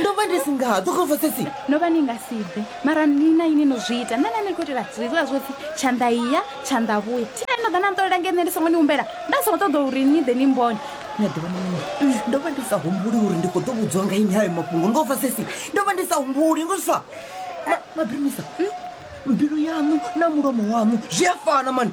ndo vha ndi si nga ḓo khova sesi no vha ni nga si bve mara ni na ini no zwi ita nṋe na ni khou itela zwiḽa zwo pfhi tshanḓa iya tshanḓa vhuya thi nani no ḓa na nṱolela nge nṋe ndi songo ni humbela nda songo ṱoḓa uri ni ḓe ni mbone ni a ḓivha mini ndo vha ndi sa humbuli uri ndi khou ḓo vhudzwa nga ini hayo mafhungo ngo fa sesi ndo vha ndi sa humbuli ngo zwa mabirumisa mbilu yaṋu na mulomo waṋu zwi a fana mani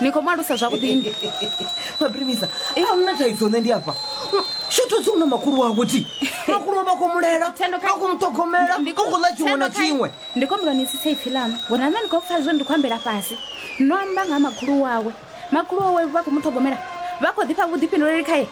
ni khou mu alusa zwavhuḓi ndi mabrivisa a hu na thaidzo nṋe ndi afha shotodzi u na makhulu wawe ti makhulu wa vha khou mulela a khou muṱhogomela u khou ḽa tshiṅwe na tshiṅwe ndi khou mbula ni tsitsa ipfhi ḽaṋu ngori name ni khou pfha zwo ndi khou ambela fhasi no amba nga ha makhulu wawe makhulu wawe vha khou muṱhogomela vha khou ḓifha vhuḓifhinduleli khaye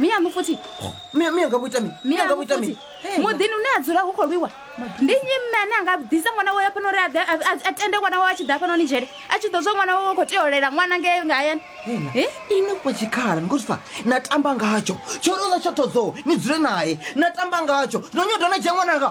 miyaṋu futhi Mia- mia nga vho ita mini? Mia nga vho miyaṋu ita futhi mini? Hey, muḓini une a dzula hu khou lwiwa ndi nnyi mme ane a nga ḓisa ṅwana wawe fhano uri a ḓe- a- a- a tende ṅwana wawe a tshi ḓa fhano ni dzhele a tshi ḓo zwa ṅwana wawe u khou tea u lela ṅwana ngei nga hayani Hela, Eh? ini fha tshikhala nikhozwifa na tamba ngatsho tsho ri u ḽa tsho thodzoo ni dzule naye na tamba ngatsho no nyoda na dzhia ṅwananga